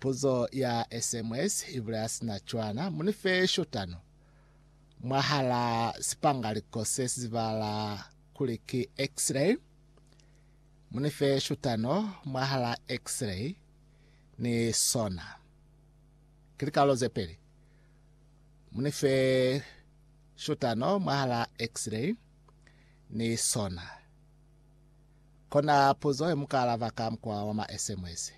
Puzo ya SMS ibulaya sina cwana, Munife shotano mwahala sipangaliko sesizibahala kuli ki X-ray. Munife shotano mwahala X-ray ni sona. Ki likalolo zepeli. Munife shotano mwahala X-ray ni sona. Kona puzo yemuka alaba ka mukwa wa ma SMS.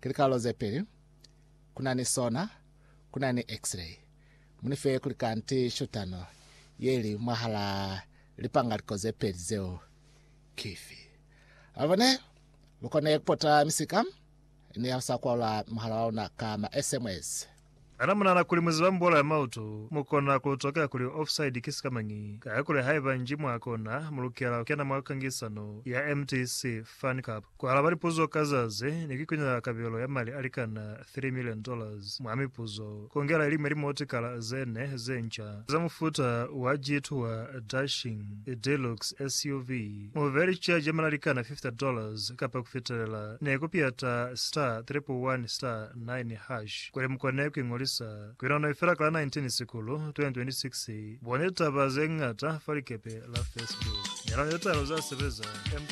Ki likalolo zepeli kuna ni sona, kuna ni X-ray. Munife kuli kanti shutano yeli mwahala lipangaliko zepeli zeo kifi. Abone lukone kupota misika ni ya kusakwaula muhala wauna ka ma SMS. Kana munahana kuli muziba mbuelo ya mautu? Mukona kulutokela kuli offside ki sikamañi, kakuli haiba nji mwa kona, mulukela kukena mwa kangisano ya MTC Fan Cup. Kualaba lipuzo ka zazi ni kuikunela kabelo ya mali alikana three million dollars mwa mipuzo, kongela iliñwi limotikala zene zenca za mufuta wa G2 wa Dashing Deluxe SUV, muvelici ya German alikana fifty dollars kapa kufitelela, ni kupiyata Star Triple One Star. 9 hash. Kuli mukone kuiñolisa ku yona noi fela ka la 19 Sikulu 2026, boneni litaba zeñata fa likepe la Facebook. Nelanani litalo zesebeza.